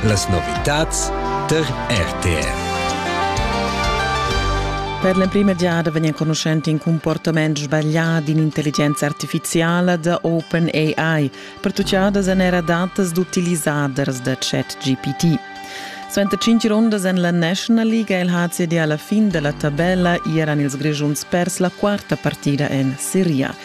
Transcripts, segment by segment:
Las novitads tar RTR. Per l'emprima giada vegn enconuschent in comportament sbaglià d'in'intelligenza artifiziala da OpenAI, pertutgadas èn era datas d'utilisaders da ChatGPT. Suenter cinc rundas en la National League è il HCD alla fin della tabella, eran ils Grischuns pers la quarta partida en Serie A.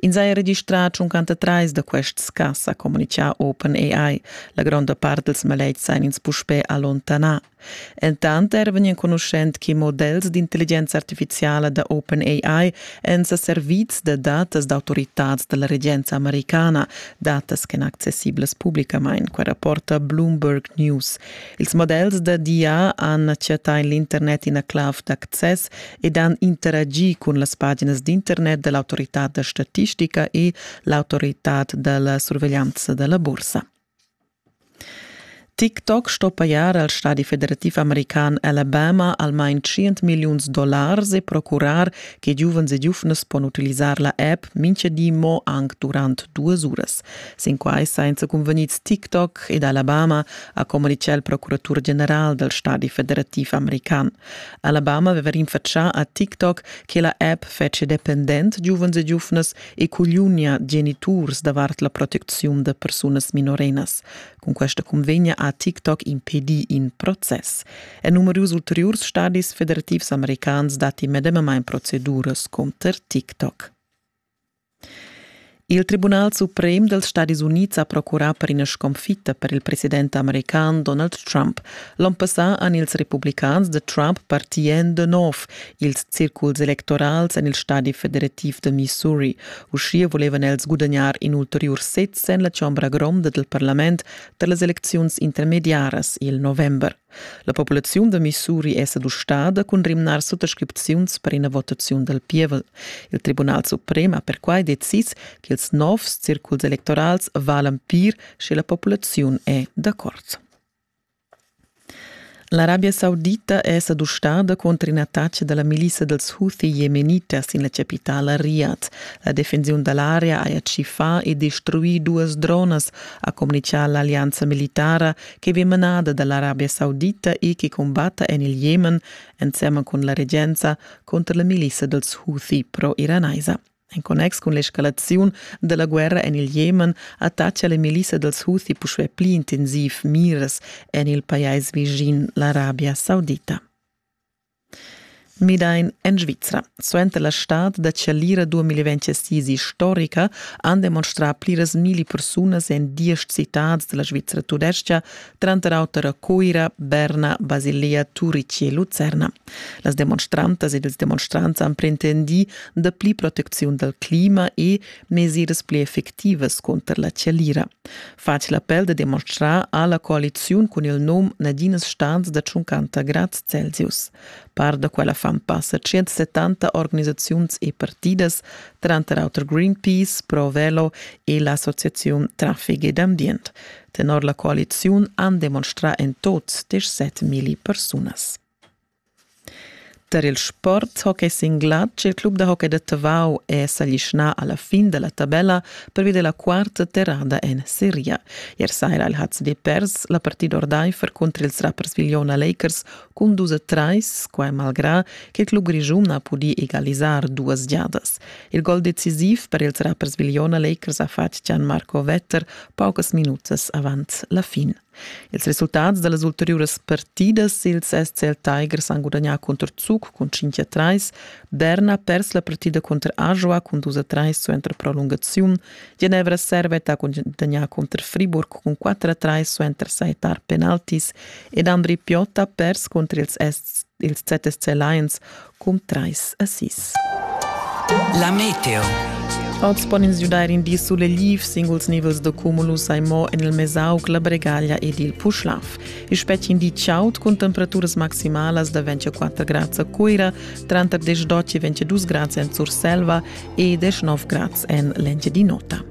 Ins ha registrà 53 da quests cas, ha communitgà OpenAI. La gronda part dals maletgs èn ins puspè allontanà. Entant er vegn enconuschent che models d'intelligenza artifiziala da OpenAI èn sa servids da datas d'autoritads da la regenza americana, datas ch'èn accessiblas publicamain, quai rapporta Bloomberg News. Ils models da DIA han chattà en l'internet ina clav d'access ed han interagi cun las paginas d'internet da l'autoritad da statistica e l'autoritad da la surveglianza da la bursa. TikTok sto pajar al stadi federativ american Alabama almain 100 milliuns dollars e procurar che giuvens e giuvnas pon utilisar la app mintga di mo anc durant duas uras. Sin quai sainza cunvegnids TikTok ed Alabama ha communitgà il procuratur general dal stadi federativ american. Alabama aveva rinfatschà a TikTok che la app fetschia dependent giuvens e giuvnas e cugliunia geniturs davart la protecziun da persunas minorenas. Cun questa cunvegna ha TikTok impedì in process. En numerus ulteriurs stadis federativs americans datti medemamain proceduras conter TikTok. Il Tribunal suprem dels Stadis Unids ha procurà per ina sconfitta per il president american Donald Trump. L'on passà han ils republicans de Trump partien de nov ils circuls electorals en il stadi federativ de Missouri. Uschia volevan els gudagnar in ulteriur sez en la chombra gronda del parlament per las elecziuns intermediaras il november. La populaziun da Missouri è sa dustada cun rimnar suttascripziuns per ina votaziun dal pievel. Il Tribunal suprem ha perquai decis ch'ils novs circuls electorals valan pir sche la populaziun è d'accord. L'Arabia Saudita è sa dustada contro un'attacca dalla milissa dels Houthi yemenita sin la capitala Riyadh. La defensiun dall'area ha tschifà e destruì duas dronas, ha communichà l'allianza militara che vegn manada dall'Arabia Saudita e che combatta en il Jemen ensemen cun la regenza contro la milissa dels Houthi pro-iranaisa. En connex cun l'escalaziun della guerra en il Jemen attaccia la milissa dels Houthi puspè pli intensiv miras en il pajais vicin l'Arabia Saudita. Midain en Svizra. Suenter la stad da chalira 2026 istorica han demonstrà pliras milli persunas en diesch citads da la Svizra tudestga, tranter auter a Cuira, Berna, Basilea, Turici e Lucerna. Las demonstrantas ed ils demonstrants han pretendì dapli protecziun dal clima e mesiras pli effectivas cunter la chalira. fatg l'appel da demonstrar ha la coaliziun cun il num Nadinas stans da 50 grads Celsius. Par da quella fan passa 170 organisaziuns e partidas, tranter auter Greenpeace, Provelo e l'Associaziun Traffic ed Ambient. Tenor la coaliziun han demonstrà en tot 17 milli persunas. Tar il sporthockey singlat il club da hockey da Tavau è s'aglischnà a la fin da la tabella pervi da la quarta terrada en seria. Ier saira il HCD pers la partida ordaifer cunter ils Rapperswil-Jona Lakers cun dus a trais, quai malgrà che il club grischun ha pudì egalisar duas giadas. Il gol decisiv per ils Rapperswil-Jona Lakers ha fatg Gian Marco Wetter paucas minutas avant la fin. Ils resultats da las ulteriuras partidas ils SCL Tigers han gudagnà cunter Zug cun 5 a 3, Derna ha pers la partida cunter Ajoa cun 2 a 3 suenter prolungaziun, Genevra Servet ha gudagnà cunter Friburg cun 4 a 3 suenter sajettar penaltis ed Andri Piot ha pers cunter ils, ils ZSC Lions cun trais a sis. La meteo. Oz pon ins giudair in di sulegliv. Singuls nivels da cumulus hai mo en il Mesauc, la Bregaglia ed il Puschlav. I spetga in di chaud cun temperaturas maximalas da 24 grads a Cuira, tranter 10 e 22 grads en Surselva e 19 grads en l'engiadin'ota.